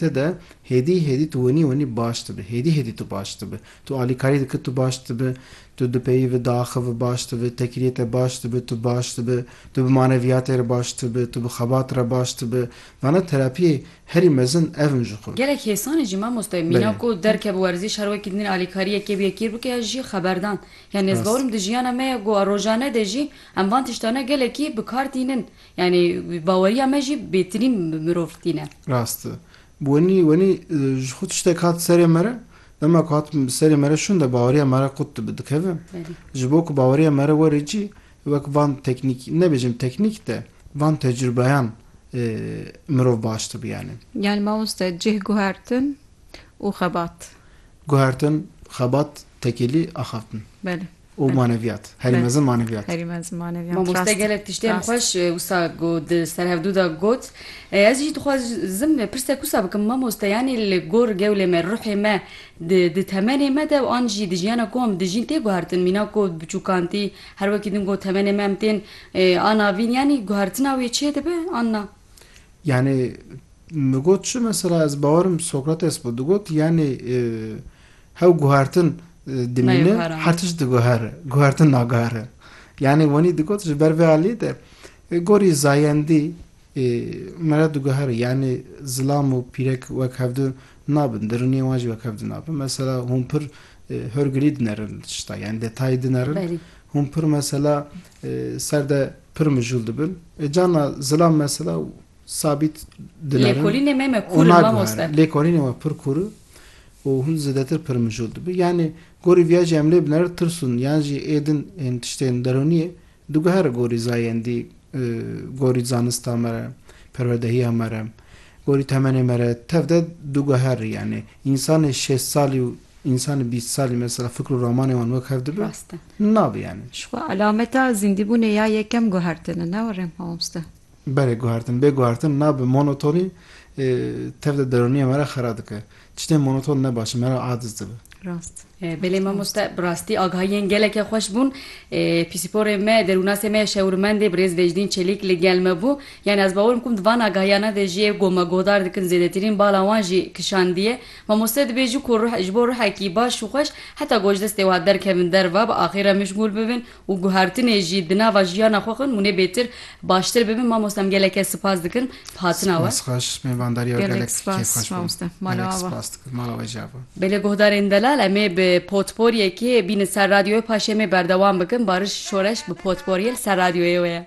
Te de hêdî hêdî tu winî winî baş dibi, hêdî hêdî tu baş dibi. Tu alîkarî dikir tu baş dibi, tu di peyî ve diaxivi baş dibi, tekiriyê te baş dibi tu baş dibi, tu bi maneviyatê re baş dibi, tu bi xebat re baş dibi. Vana terapiyê herî mezin ev in ji xwe. Gelek hêsanê jî mamoste mîna Belê. ku derke bi werzîş her wekî din alîkariyekê bi yekî bike ya jî xeberdan. Yanî ez Rast. bawer im di jiyana me ya ku a rojane de jî em van tiştane gelekî bi kar tînin. Yanî baweriya me jî bêtinîn mirov tîne. Rast e. Wenî wenî ji xwe tiştek hat serê me re, dema ku hat bi serê me re şûn de baweriya me re qut dibe dikeve. Ji bo ku baweriya me re were cî wek van teknîk nebêjim teknîk de van tecrûbeyan mirov baş dibe yanî. Yanî mamoste cih guhertin û xebat. Guhertin, xebat tekêlî axaftin. Belê. û maneviyat. Herî mezin maneviyat. Herî mezin maneviyat. Mamoste gelek tiştê em xweş wisa got di serhevdû de got. Ez jî dixwazim pirsek wisa bikim mamoste yanî li gor gewlê me, ruhê me di temenê me de û an jî di jiyana ku em dijîn tê guhertin. Mîna ku biçûkantî her wekî din got temenê me em tên an avîn yanî guhertina wê çê dibe an na? Yanî min got çi mesela ez bawerim Sokrates bû digot yanî Hew guhertin dimîne, her tişt diguhere. Guhertin naguhere. Yanî wenî digot ji ber vê aliyê de gorî zayendî me re diguhere. Yanî zilam û pîrek wek hev di nabin, dirûniyên wan jî wek hev di nabin. Mesela hûn pir hurgilî dinerin li tişta yanî detayî dinerin. Hûn pir mesela ser de pir mijûl dibin. Carna zilam mesela sabît dinerin. Lêkolînê me me kûr in mamoste. Lêkolînê we pir kûr in. û hûn zêdetir pir mijûl dibin. Yanî gorî viya jî em lê biner tirsûn yan jî ê din ên tiştên derûniyê diguhere gorî zayendî, gorî zanista me re, perwerdehiya me re, gorî temenê me re tev de diguherî yanî însanê şêst salî û însanê bîst salî mesela fikr û ramanê wan wek hev dibe? Rast e. Nabe yanî. Jixwe elameta zîndîbûnê ya yekem guhertin e ne were mamoste? Berê guhertin, bê guhertin na bi monotonî tev de deronîyê me re xera dike. Tiştên monoton ne baş in, me re adiz dibe. Rast e. Belê mamoste bi rastî agahiyên gelekê xweş bûn. Pîsîporê me, derûnasê me, şewirmendê birêz Vecdîn Çelîk li gel me bû. Yanî ez bawer bikim di van agahiyane de jî ê ku me guhdar dikin zêdetirîn bala wan jî kişandiye. Mamoste dibê ji ku ji bo ruhekî baş û xweş heta gojdestê wiha derkevin derve bi axê re mişgûl bibin û guhertinê jî di nava jiyana xwe xwin hûnê bêtir baştir bibin mamosta em geleke sipas dikin bi hatina we. Spas xweş mêvandariya we gelek kêf xweş bû. Gelek spas dikim mala we jî ava. Belê guhdarên delal em ê bi potporyekê bînin ser radyoyê paşê em ê berdewam bikin Bariş Şoreş bi potporyê li ser radyoyê we ye.